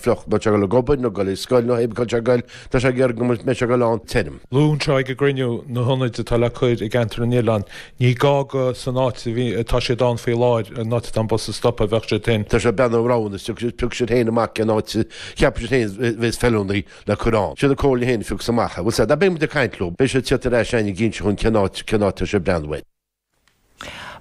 fliuch, má tá ag gabháil ag obair, nó dul ag scoil, nó hé bith cá bhfuil siad ag gabháil, tá sé fearr go mbeidh siad ag gabháil ann, tirim. Luadh anseo ag an gcruinniú na hionaid atá le cur i gCeantar na nOileán, ní gá go san áit a bhí, atá siad ann faoi láthair, an áit atá an bus ag stopadh, bheadh siad féin. Tá sé ag breathnú ar roghanna, is tiocfaidh siad, piocfaidh siad féin amach cén áit a cheapann siad féin a bhéas feiliúnaí le cur ann. Siad an Chomhairle féin a phiocfas amach é. Bhuel, sea, beidh muid ag caint leo, beidh siad ag teacht ar ais a'inn ag inse dhúinn cén áit, cén áit atá siad ag breathnú air.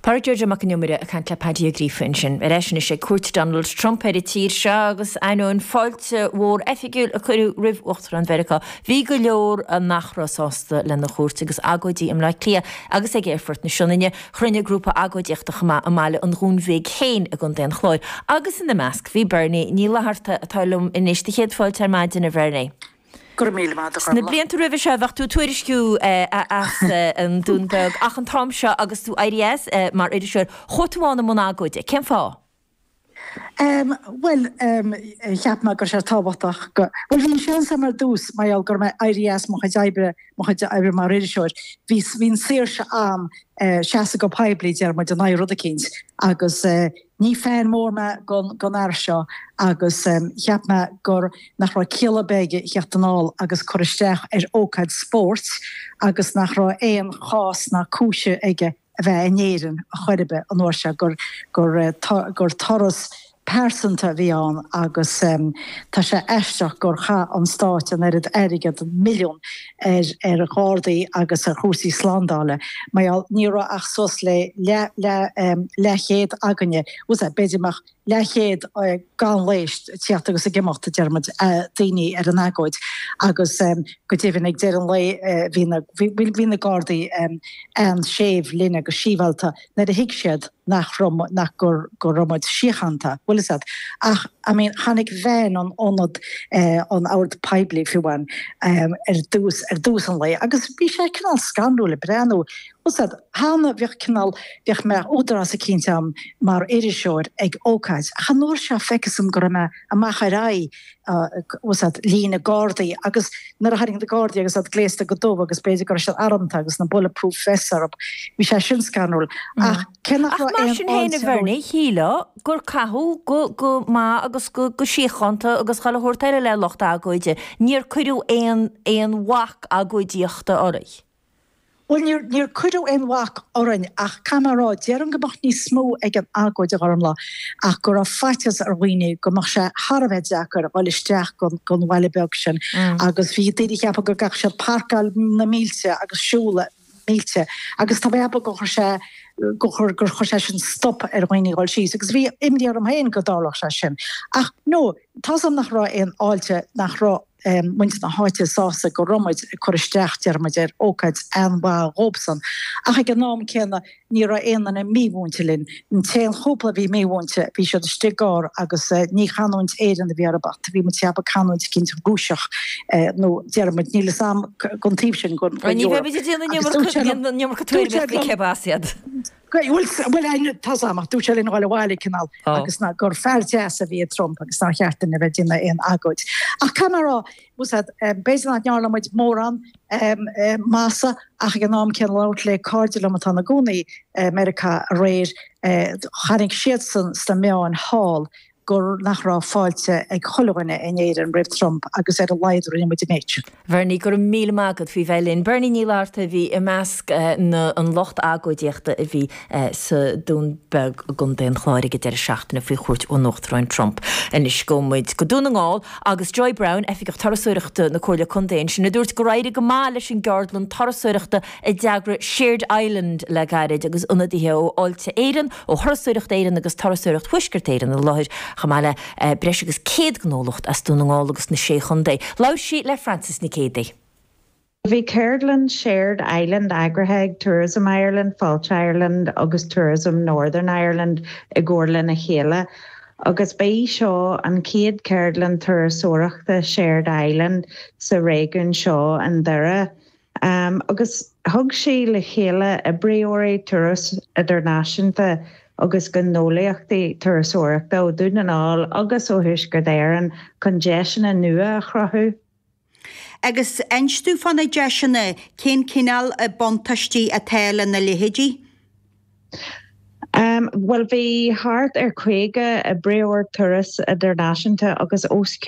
Pádraic Joe Joe Mac an Iomaire ag caint le Paddy Ó Gríofa ansin. Ar ais anois ag cuairt Donald Trump ar an tír seo agus ainneoin fáilte mhór oifigiúil a cuireadh roimh Uachtarán Mheiriceá, bhí go leor nach raibh sásta lena chuairt agus agóidí i mBleá Cliath agus ag Aerfort na Sionainne. Chruinnigh grúpa agóidíochta chomh maith i mbaile an Dúin Bhig féin i gContae an Chláir agus ina measc bhí Bernie Ní Fhlatharta, atá liom anois. Do chéad fáilte ar maidin, a Bhernie. Go raibh míle maith a'd, Charlotte. Sna blianta roimhe seo, bheadh tú ag tuairisciú as an Dún Beag, ach an t-am seo agus tú éirithe as mar iriseoir, chuaigh tú ann i mbun agóide. Cén fáth? Bhuel, cheap mé go raibh sé tábhachtach go, bhuel, bhí an seans agam ar dtús mar gheall go raibh mé éirithe as mo chuid oibre, mo chuid oibre mar iriseoir, bhí, bhí an saoirse a'm seasamh go poiblí, déarfaidh muid, in aghaidh rud eicínt agus, Ní fan mór mé don fhear seo agus cheap mé gur nach raibh ciall ar bith aige theacht anall agus cur isteach ar ócáid spóirt agus nach raibh aon chás ná cúis aige a bheith in Éirinn ar chor ar bith an uair seo, gur turas pearsanta a bhí ann agus tá sé aisteach gur chaith an Stát an oiread airgead, milliún. ar ghardaí agus ar chúrsaí slándála. Mar gheall, ní raibh ach suas le leathchéad againne, bhfuil a fhios a'd, b'fhéidir go mbeadh leathchéad gan leigheas tíocht agus ag imeacht, déarfaidh muid, daoine ar an agóid. Agus go deimhin, ag deireadh an lae, bhí na gardaí an-séimh linn agus síbhealta. nuair a thuig siad nach raibh muid, nach, go, go raibh muid síochánta, bhfuil a fhios a'd, ach, I mean, tháinig veain an aonad, an ord poiblí fiú ann ar dtús, ar dtús an lae agus bhí sé cineál scanrúil le breathnú, bhfuil a fhios a'd, thána, bhíodh cineál, bhíodh mé údarás eicínt a'm mar iriseoir ag ócáid ach an uair seo facthas dhom go raibh mé amach ar aghaidh, líne Gardaí agus nuair a tháinig na Gardaí agus iad gléasta go dubh agus b'fhéidir go raibh siad armta agus na bulletproof vests orthu, bhí sé sin scanrúil. Ach cé nach raibh aon fháilte air. Ach mar sin féin a Bhernie, shílfeá gur caitheadh go maith agus go síochánta agus chun a thabhairt ar a leith lucht agóide, níor cuireadh aon bhac agóidíochta oraibh. Bhuel, níor, níor cuireadh aon bhac orainn ach, caithfidh mé a rá, déarfainn go mbeadh níos mó ag an agóid normally ach go raibh faitíos ar dhaoine go mbeadh sé thar a bheith deacair dhul isteach gon, gon bhaile beag sin agus bhí daoine ag ceapadh go gcaithfeadh siad pairceáil na mílte agus siúl na mílte agus tá mé ag ceapadh gur chuir sé, gur chuir, gur chuir sé sin stop ar dhaoine dhul síos agus bhí imní orm féin go dtarlódh sé sin ach, no, tá's a'm nach raibh aon fháilte, nach raibh. muintir na háite sásta go raibh muid ag cur isteach, deir muid, ar ócáid an-mhaith dhóibsan. Ach ag an am céanna ní raibh aon duine mímhúinte linn. An t-aon chúpla a bhí mímhúinte, bhí siad istigh i gcarr agus ní chanúint Éireannach a bhí orthu ach bhí mé ag ceapadh canúint eicínt Rúiseach nó, deir muid, níl 'fhios a'am gon taobh sin gon Eoraip. Ní bheidh muid ag déanamh an iomarca tuairimíochta cérb as iad. Bhuel, tá's a'm, ach dúirt sé linn dhul abhaile, cineál, agus ná gur fear deas a bhí i Trump agus nár cheart dúinn a bheith ag déanamh aon agóid. Ach caithfidh mé a rá, tá's a'd, b'fhéidir nach ndearna muid mórán maitheasa, ach ag an am céanna labhairt le cairde liom atá ina gcónaí i Meiriceá aréir, chonaic siadsan sna meáin thall gur, nach raibh fáilte ag chuile dhuine in Éirinn roimh Trump agus ar a laghad rinne muid an méid sin. Bernie, go raibh míle maith agat faoi bheith linn. Bernie Ní Fhlatharta a bhí i measc na an lucht agóidíochta a bhí sa Dún Beag i gContae an Chláir ag an deireadh seachtaine faoi chuairt ón Uachtarán Trump. Anois gabhfaidh muid go Dún na nGall agus Joy Browne, Oifigeach Turasóireachta na Comhairle Contae ansin a dúirt gur éirigh go maith leis an gceardlann turasóireachta a d'eagraigh Shared Island le gairid agus ionadaithe ó Fháilte Éireann, ó Thurasóireacht Éireann agus Turasóireacht Thuaisceart Éireann i láthair, chomh maith le breis agus 100 gnólacht as Dún na nGall agus na Sé Chontae. Labhair sí le Frances Nic Géadaigh. Bhí ceardlann Shared Island eagraithe ag Tourism Ireland, Fáilte Ireland agus Tourism Northern Ireland i gcomhar lena chéile agus ba í seo an chéad cheardlann turasóireachta Shared Island sa réigiún seo i nDoire. Agus thug sí le chéile oibreoirí turas idirnáisiúnta agus gnólaíochtaí turasóireachta ó Dhún na nGall agus ó Thuaisceart Éireann chun deiseanna nua a chruthú. Agus inis domh fá na deiseanna, cén cineál buntáistí atá lena leithéidí? Bhuel, bhí thart ar 50 oibreoir turas idirnáisiúnta agus os cionn